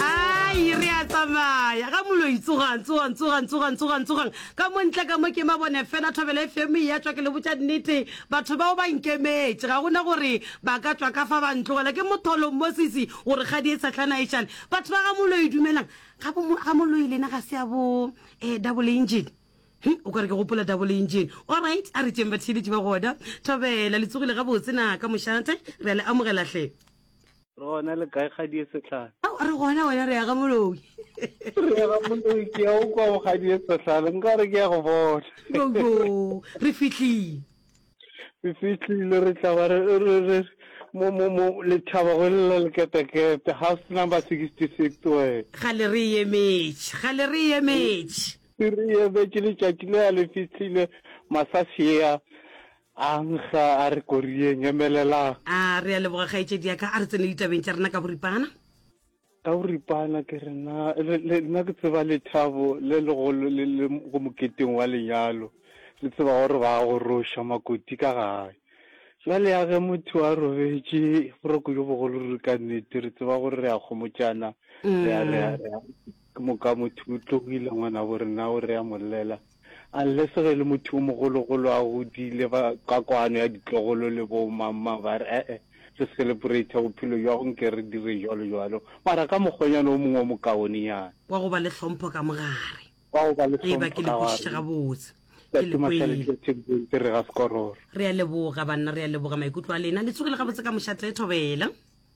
ai re a tsamaya ga moloi tsogang tsogang tsogang tsogang tsogang tsogang ka mo ntle ka mo ke mabone fela thobele fm ya tswa ke le botša nnete batho bao ba nkemetše ga gona gore ba ka tswa ka fa ba ntlogela ke motholong mosisi gore ga di e satlhana e šale batho ba ga moloi dumelang ga bo- ga moloi lena ga se ya bo um double engine He, o ka re ke gopola double engine allright a re tšeng batheeletši ba gona thobela le tsogile gabotse na ka mošate re a le amogelatlhe Re gona le kae kgadie sehlare? Ao, a re gona wena re ya ga moloi. Re ya ga moloi ke ya o kwa go kgadie sehlare nka re ke ya go bona. Yoyo re fihlile. Re fihlile re tla ba re re re mo mo mo lethaba go lela leketekete house number 66 wena. Gale re emetše gale re emetše. Re emetše letšatši le ya le fihlile masasea. A nkga a re, Koriyeng, emelelang! A, Re a leboga, kgaetšedi ya ka. A re tsene ditabeng tša rena ka boripana. Ka boripana, ke re, Na le, le, nna ke tseba lethabo le legolo le le go moketeng wa lenyalo. Le tseba gore ba goroša makoti ka gae. Bjale ya ge motho a robetše boroko bjo bogolo ruri ka nnete, re tseba gore re a kgomotšana, re a, re a, re a, ke moka motho o tlogile, ngwanabo rena o re a mo llela. Unless ge e le motho o mogologolo a godile ba ka kwano ya ditlogolo le bo mamma ba re ee re celebrate bophelo jwago nke re dire jwalo jwalo mara ka mokgwanyana o mongwe o mokaonenyana. Wa go ba le hlompho ka mo gare. Wa go ba le hlompho ka gare. Eba ke le kwešiše gabotse. Ke le kwele. Re ga sekororo. Re a leboga banna, re a leboga maikutlo a lena. Le tsogile gabotse ka mošate, Thobela.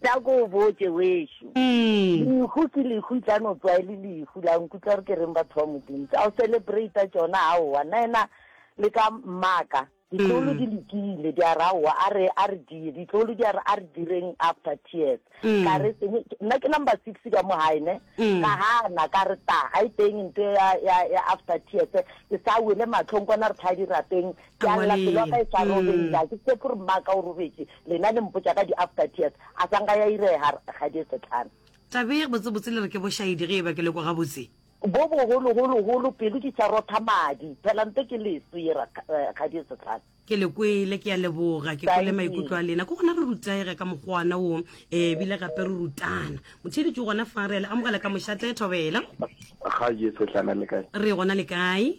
Tla ko o botše wešo. Lehu ke lehu e tla no tswa e le lehu la nkutlwa gore ke reng batho ba Modimo. Tsa go celebrata tšona aowa nna ena le ka mmaka. Ditloholo di lokile di a re aowa a re a re die ditloholo di a re a re direng after tears. Ka re seng nna ke number six ka mo gae ne ka gana ka re ta ga e teng nto ya ya ya after tears ke sa wele matlhong kwana re tla dirapeng ke a lla pelo ya ka e sa robetše ga ke tshepe gore mmaka o robetše Lena le mpotša ka di after tears, a sa nka ya irega Rakgadi Setlana. Thabeng, Botsebotse le re ke bošaedi ge eba ke le kwa gabotse. Bo bogolo golo golo, pelo di tša rotha madi, phela nto ke leso ye Rakgadi Setlana. Ke le kwele, ke a leboga, ke kwele maikutlo a lena. Ke gona re rutega ka mokgwa ona wo, ee, ebile gape re rutana. Motheeletši o gona fa, re a le amogela ka mošate. Thobela. Rakgadi Setlana le kae? Re gona le kae?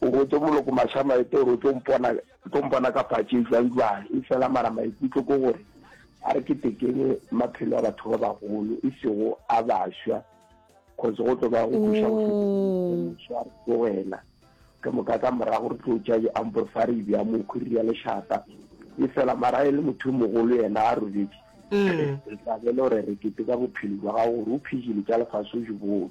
O botše Moloko Mashamaete gore o tlo mpona, o tlo mpona ka phatše e jwang jwang, efela mara maikutlo ke gore a re ketekeng maphelo a batho ba bagolo e sego a bašwa, cause go tlo ba go buša go feta go wena ke moka ka morago re tlo tša ambo fa re bja mokhwiri ya lešata e fela mara e le motho o mogolo yena a robetše mm. re tla bele gore re kete ka bophelo jwa gago gore o phedile tša lefase o jebone